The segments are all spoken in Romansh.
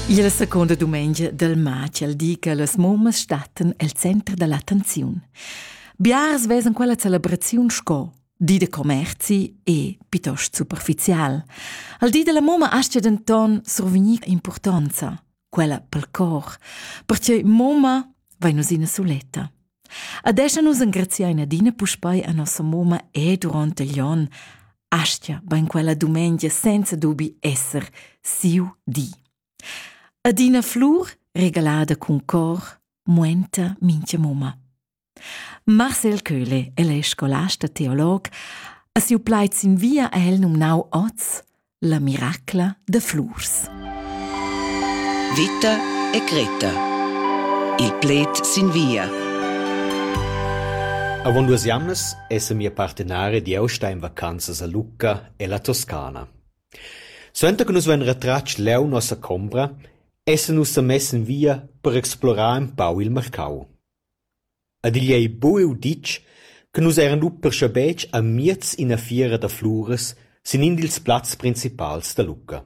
Il seconda dumengia del matg di che las mummas stattan el center dell'attenziun. Biars vesan quella celebraziun sco di de commerzi e piuttosto superficial. Al di della mumma astia denton survegnir importanza. quella pel cor, perche moma vai nus ina suletta. Adesso nus engraziain adina puspei a nossa moma e durante gli on, astia ben quella dumengia senza dubi esser siu di. Adina flur regalada cun cor, muenta mincha moma. Marcel Köhle, el è scolast e teolog, ha siu plaid sin via ha el numnau oz la miracla de flurs. Vita e Greta. Il pled sin via. Avon duas jamnas esse mia partenare di austa in vacanzas a Lucca e la Toscana. Suenter che nus vein retratg leu nossa combra, esse nus sa mess in via per explorar un pau il marcau. Ed igl ei buc uditg che nus eran lu perscabetg amiez ina fiera da fluras sin in dils plazs principals da Lucca.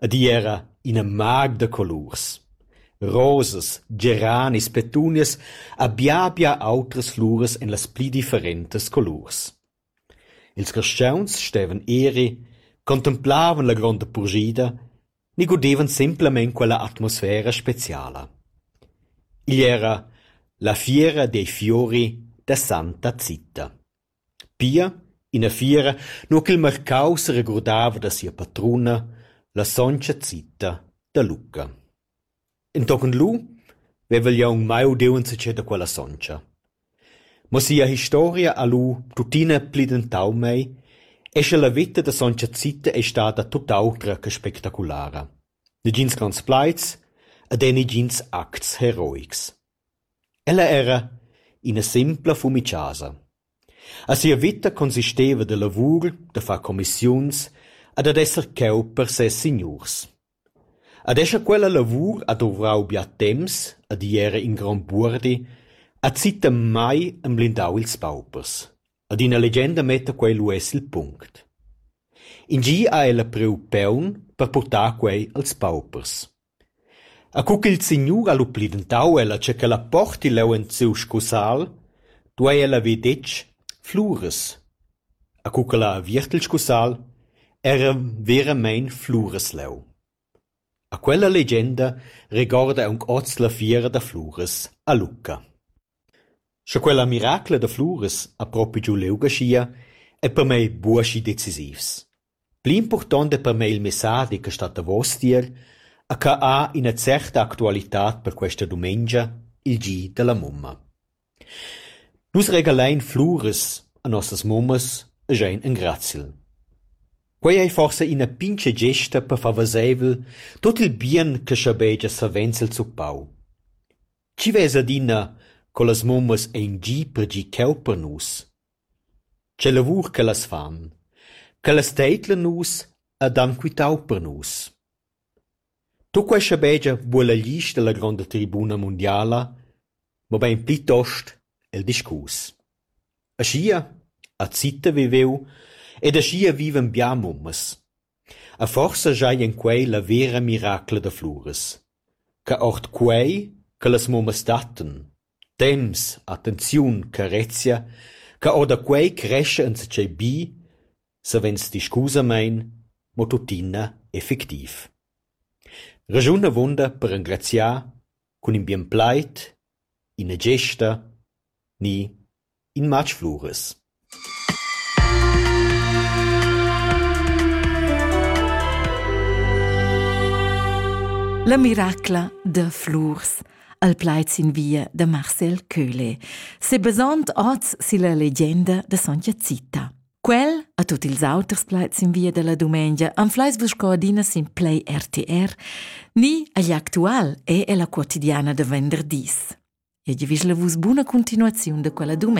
Ed igl era ina mag da colurs. Rosas, geranis, petunias ha bia bia autras fluras en las pli differentas colurs. Ils carstgauns stevan eri, contemplavan la gronda purschida ni gudevan semplamein quella atmosfera speciala. Igl era la fiera dei fiori da Santa Zita. Pia ina fiera nua ch'il marcau seregurdava da sia patruna, la sontga Zita da Lucca. Entochen lu vevel jeu aunc mai udiu enzatgei da quella sontga. Mo sia historia ha lu tuttina plidentau mei e sche la veta da sontga Zita ei stada tut autra che spectaculara. Negins grands plaids ed era negins acts heroics. Ella era ina simpla fumichasa. A sia veta consisteva da lavur, da far commissiuns e dad esser cheu per ses signurs. Ad escha quella lavur ha duvrau bia temps, ha di era in grond buordi, ha zittem mai emblindau ils paupers. Ad ina legenda metta quei lu uss il punct. In gi ha ella priu peun per purtar quei als paupers. E cu ch'il signur ha lu plidentau ella che quella porti leu en siu scusal, duei ella haver detg: Fluras. E co ch'el ha aviert il scussal, era veramein Fluresleu. E quella legenda regorda aunc oz la fiera da Flures a Lucca. Sche quella miracla da Flures ha propi giu liug aschia, ei per mei buca schi decisivs. Pli impurtonta per mei il messadi che stat davos tier ha cheu ha ina certa actualitad per questa dumengia, il gi dalla mumma. Nus regalein fluras a nossas mummas e schein engraziel. Quei ei forsa ina pintga gesta per far veseivel tut il bien che schabegia savens el zuppau. Chi vesa adina co las mummas ein gi per gi cheu per nus? Che lavur ch'ellas fan, ch'ellas teidlan nus ed han quitau per nus. Tuc quei schabegia vul el gist dalla gronda tribuna mundiala, mobein plitost el discurs. Aschia ha Zita viveu ed aschia vivan bia mummas. E forsa schai en quei la vera miracla da Fluras, che ord quei che las mummas dattan. Temps, attenziun, carezia, che orda quei crescha enzatgei bi, savens discusamein, mo tuttina effectiv. Raschun avunda per engraziar cun in bien plaid, ina gesta ni In matg fluras. La miracla da flurs al plaid sin via da Marcel Köhle, sebasond oz silla legenda da Sontga Zita. Quel, a tutti ils auters plaids in via dalla dumengia, anfleis vus co adina sin Play RTR, ni agli actual e ella quotidiana da venderdis. E givisla vus buna continuaziun da quella dumengia.